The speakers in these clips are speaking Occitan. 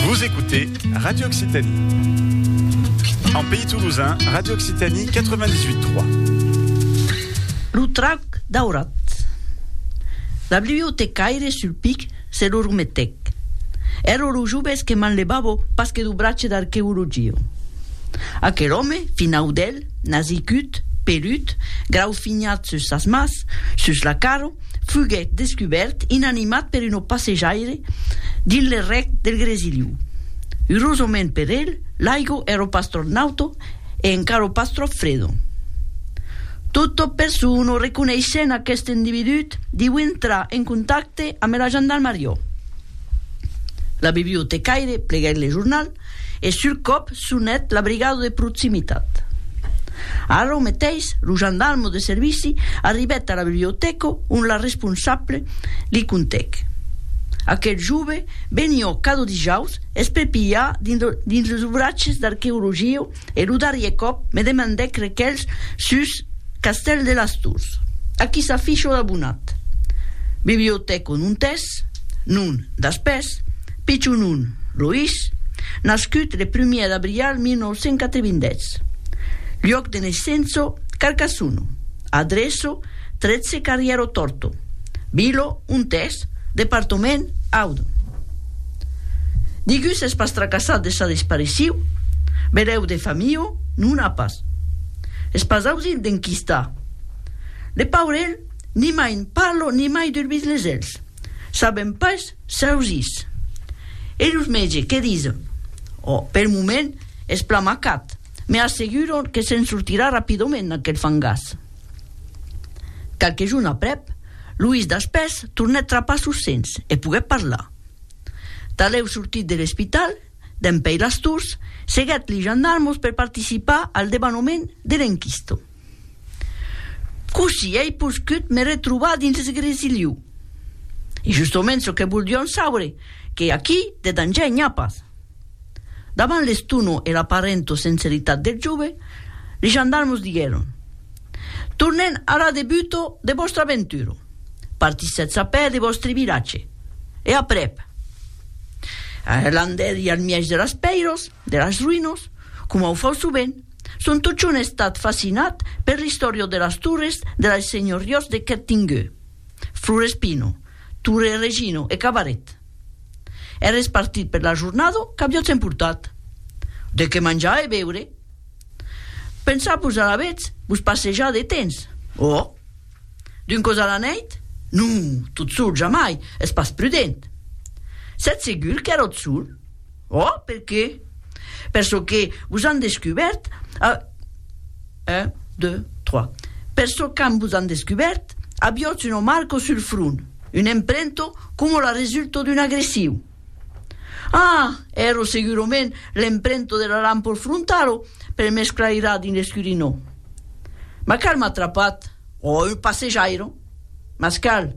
Vous écoutez Radio Occitanie. En pays toulousain, Radio Occitanie 98.3. Lo trauc daurat. La bibliotecaire sul pic se lo rumetec. Ero lo joves que m'enlevavo pas que do brace d'archeologio. Aquel home, finau d'el, Nasicut, pelut, graufinhat sus sas mas, sus la caro, fuguèt descubèrt inanimat per un opasejaire dins le rec del Gresiliu. Urosament per el, l'aigo èro pas tròp nauto e encaro pas tròp fredo. Totò persona reconeissent aqueste individut diu entrar en contacte ambe la jandalmariò. La bibliotecaire pleguèt le jornal e sul còp sonèt la brigada de proximitat. Arrò meteis, lo jandalmo de servici arribèt a la bibliotèca ont la responsable li contèc, Aquel jove venió cada dijaus espepilhar dins los obratges d'arqueologia E lo darrier còp me demandèc requelhs sus Castèl de las Tors. Aquí s'a fichot abonat. Bibliotèco non t'es, non, daspès, pichon non, lo is, nascut le prumièr d'abrial 1987. Luòc de naissenço, Carcassono. Adreço, 13 carrièro Torto. Vilo, on t'es, departament, Audun. Nigú s'es pas tracassat de sa dispariciu, berèu de Famiu non a pas. Es pas ausint d'enquistar. Le paurelh nimai n' parlo nimai d'urbis les elhs saben pas s'ausís. E los mètge que dison? O, pel moment es plan macat, me asseguron que se'n sortirà rapidoment d'aquel fangàs. Qualque jorn aprèp, Luís Daspès tornèt trapar sos sens e poguèt parlar. Talèu sortit de l'espital, dempèi las tors, seguèt li jandarmos per participar al debanhament de l'enquisto. Cossí ei poscut me retrobar dins l'esgresiliu? Es justomènt çò que voldión saure, que aquí de danger n'i a pas. Davant l'estono e l'aparento senseritat del jove, li gendarmos diguèron, Tornem ara de buto de vòstra aventura. Partissetz a pè de vòstre vilatge. E aprèp? Allan dèri al mièg de las pèiras, de las ruïnas, coma o fau sovent, son totjorn estat fascinat per l'istòria de las torres de las senhoriós de Quertingueu, Florespino, Torre Regino e Cabaret. È respartit per la jornada qu'aviatz emportat. De qué manjar e beure. Pensar-vos alavetz vos passejar de tens. Òh! D'un cos a la nèit? Non, tot sol jamai, es pas prudent. Sètz segur qu'èratz sol? Oh, per qué? Per çò que vos an descubèrt a. Un, deux, trois. Per çò qu'an vos an descubèrt, aviotz una marco sul front, un emprento coma la resulto d'un agressiu. Ah! Ero segurament l'emprento de la lampor frontalo per m'esclairar dins l'escurinó. Ma cal m'a trapat, o un passejairo? Mas cal,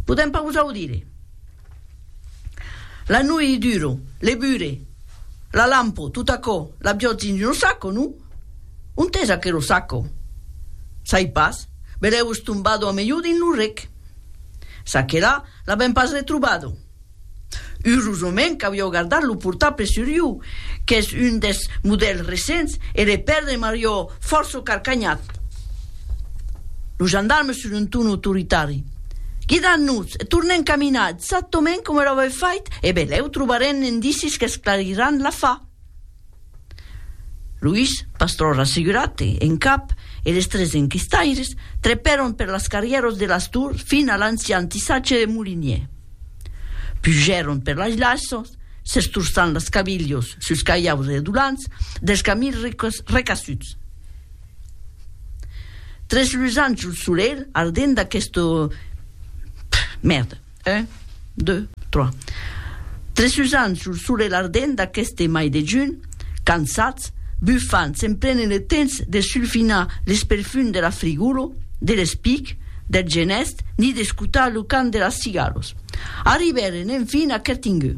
podèm pas vos audire. La nui i duro, le bure, la lampo, tot aquò, l'aviòtz dins lo saco, non? Ont es aquero saco? Sai pas, be l'èu estombado a melhor dins lo rec. Ça que la, l'avèm pas retrobado. Urosament qu'aviòu gardat lo portable sur iu, qu'es un des modèls recents, e le pèrdre m'arió fòrça carcanhat. Lo gendarme sus un ton autoritari. Guidan-nos e tornen caminar exactament coma lo avèm fait e belèu trobarem indicis qu'esclariràn l'afar. Luís, pas tròp rassegurat, e en cap, e les tres enquistaires, trepèron per las carrièros de las Tours fin a l'ancian tissatge de molinier. Pujèron per las laissons, s'estorçant las cabilhos sus caiaus redolants dels camins recassuts. Tres lusans sul solelh ardent d'aqueste Mèrda, un, deux, trois Tres lusans sul solelh ardent d'aqueste mai de junh, cansats, bufants, se'n prenen le temps de sulfinar l'esperfum de la frigolo, de l'espic, del genèst, ni d'escotar lo cant de las cigalos. Arribèren enfin a Kertingeu.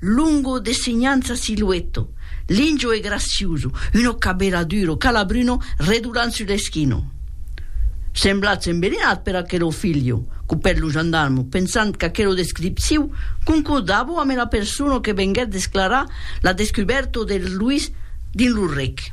Lungo de segnança silueto, lingio e graciuso, uno cabela duro, calabruno, redulant sus l'eschino. Semblatz embelinat per aquelo filho, copèt lo gendarmo, pensant qu'aquelo descriptiu concordavo ame la persona que venguèt desclarar la descubèrta del Luis dins lo rec.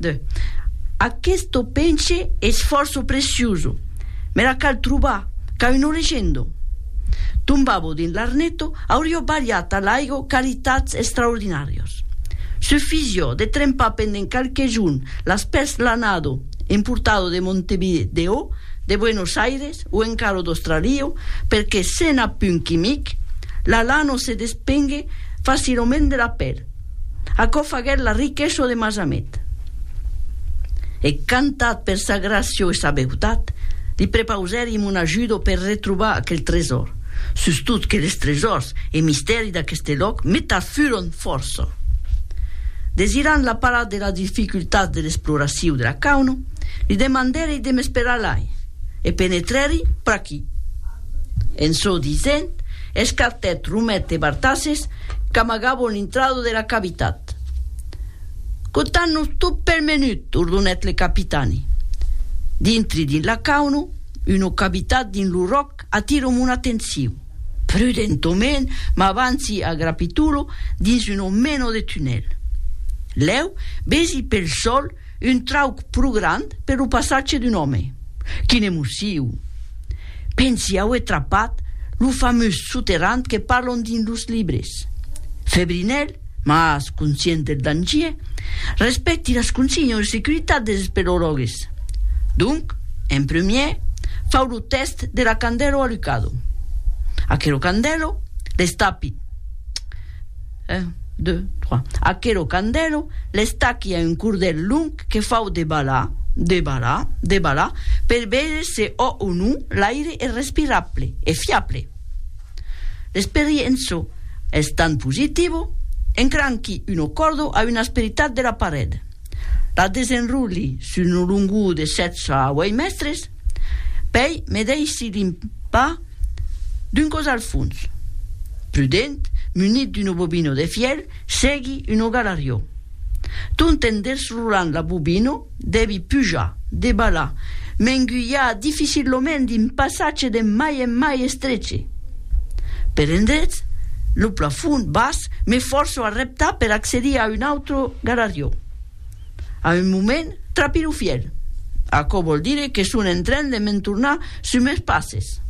De. Aquesto penche es fòrça preciuso, m'era cal trobar qu'a un origendo. Tombavo dins l'arneto, aurio balhat a l'aigo qualitats extraordinàrios. Sufisio de trempar pendent qualque jorn las pels lanado importado de Montevideo, de Buenos Aires o encara d'Australio, perque sena punt quimic, la lano se despengue facilament de la pel. Aquò faguèt la riqueço de Masamet. E cantat per sa gràcio e sa beutat, li prepausèrim un ajudo per retrobar aquel tresor, sustot que les tresors e mistèri d'aqueste lòc metat furon fòrça. Desirant la parar de las dificultats de l'exploraciu de la Cauno, li demandèri de m'esperar lai e penetrèri pr'aquí. En çò disent, escartèt Romet e Bartasses qu'amagavon l'intrada de la cavitat. Contan-nos tot pel menut, ordonèt le capitani. Dintri dins la cauna, una cavitat dins lo ròc atira mon atencion. Prudentament m'avanci a grapitolo dins una mena de tunèl. Lèu, besi pel sòl, Un trauc pro grand per lo passatge d'un òme. Quin emociu! Pensi auer trapat lo famós soterrant que parlon dins los libres. Febrinèl, mas conscient del dangier, respècti las consignon de securitat des espelorògues. Donc, en premier, fau lo tèst de la candèlo alucado. Aquelo candèlo, l'estapi. Un, deux, trois. Aquelo candèlo l'estachi a un cordèl long que fau de balar, de balar, de balar, per veire se ò o non l'aire es respirable, es fiable. L'experienço es tant positivo, encranqui uno còrdo a una asperitat de la paret, la desenrolhi sus una longor de sètz a ueit mèstres, pèi me dèishi limpar, D'un cos al fons. Prudent, munit d'uno bobino de fièl, segui uno galarió. Tont en desrolant la bobino, devi pujar, debalar, m'engulhar dificillament d'un passatge de mai en mai estreche. Per endrets, lo plafond bas, me fòrço a reptar per accedir a un autre galarió. A un moment, trapi lo fièl. Aquò vòl dire que son en tren de me'n tornar sus meus passes.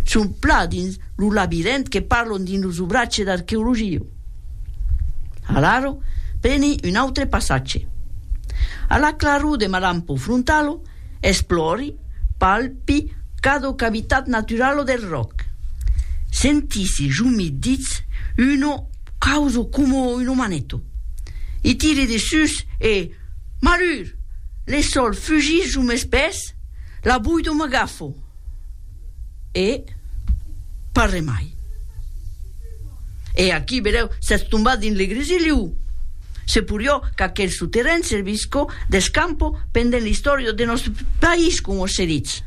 Son plan dins lo labirent que parlon dins los obratge d'arqueologia. Alaro, preni un autre passatge. A la claror de ma lampa o frontalo, Esplòri, palpi cada cavitat naturala del ròc. Sentisi jumit ditz una causa coma una maneta. I tiri de sus e, malur! Le sòl fugís jo mes pès, la boida m'agafo. E pas re mai. E aquí, vedèu, s'es tombat dins le grisiliu. Se porió qu'aquel soterren servisco d'escampo pendent l'istòria de nòste país, como se ditz.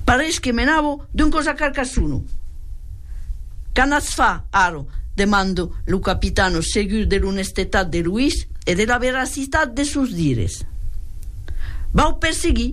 Parés que menavo d'un cos a Carcassono. Qu'a anatz far, ara? demanda lo capitano, segur de l'onestetat de Luís e de la veracitat de sos dires. Vau perseguir.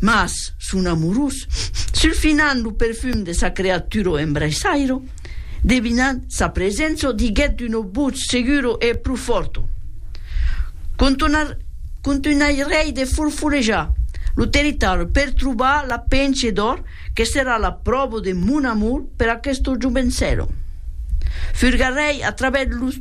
Mas son amorós, sulfinant lo perfum de sa creatura o embraissairo, devinant sa presença o diguèt d'una votz segura e pro fòrta, Contonar, contunhairèi de forfolejar lo territòri per trobar la penche d'òr que serà la pròva de mon amor per aquesta jovençèla. Furgarèi a travèrs los.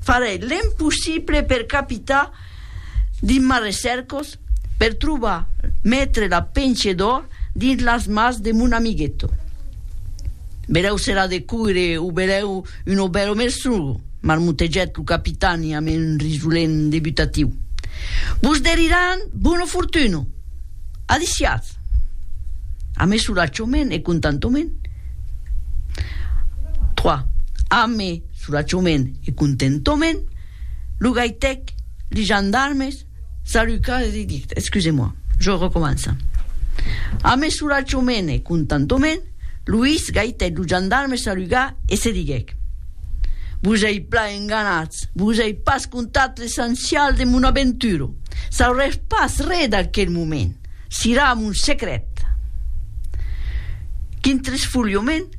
Farè l'empossible per capitar dins mas recèrcos per trobar metre la penche d'òr dins las mas de mon amigueto. Berèu serà de coire o berèu un obèro merstrugo, marmotegèt lo capitani amb un risolent debutatiu. Vos deriràn bona fortuna! Adiciatz! Ame solatjament e contantoment. 3. Ame Soulachoment e contentoment, lo gaitèc, li jandarmes, Saluca, li dic, excusez-moi, je recomença. Amé soulachoment e contentoment, Louis gaitèc lo jandarme saluga e se diguèc, Vos ei plan enganats, vos ei pas contat l'essencial de mon aventura, sauretz pas re d'aquel moment, sirà mon secret. Quin tresfolhament!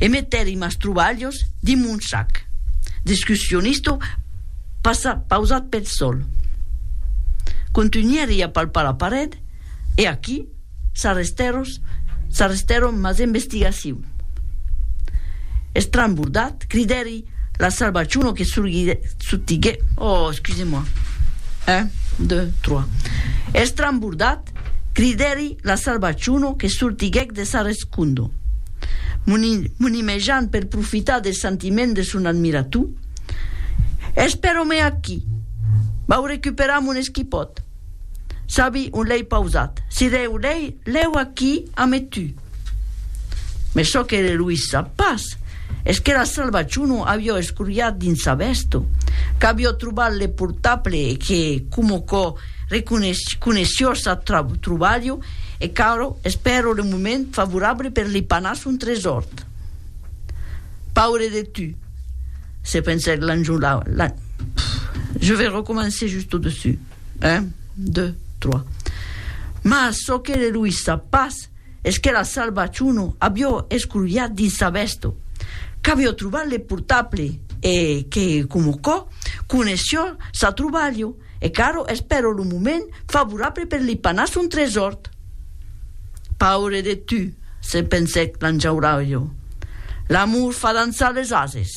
e metèri mas trobalhos dins mon sac d'excursionista pausat pel sòl. Contunhèri a palpar la paret e aquí s'arrestèron mas investigacions. Estrambordat, cridèri la salvaciuna que sortiguèt de sa rescòla. Cundo, monimejant per profitar deth sentiment de son admirator, Ès però me aquí! Vau recuperar mon esquipòt! Sabi on l'ei pausat, si deu l'ei lèu aquí ame tu! Mès çò que Eloís sap pas es qu'era Salvaciuno avió escurriat dins sa vèsto, qu'avió trobat le portable e que, coma quò Reconeissiors ath trobalho e Caro espèro le moment favorable per li panar son tresòrt. Paure de tu, se pensèc l'Anjolà. Je vais recommencer just au dessus. Un, deux, trois. Mas çò que le loïssa pas es que la Salva Chuno avió escrolhat dins sa vèsto, qu'avió trobat le portable e que, coma quò, coneissió sa trobalho. e qu'arro es però lo moment favorable per li panar son tresòrt. Paure de tu, se pensèc l'anjauraulho, l'amor fa dançar les ases.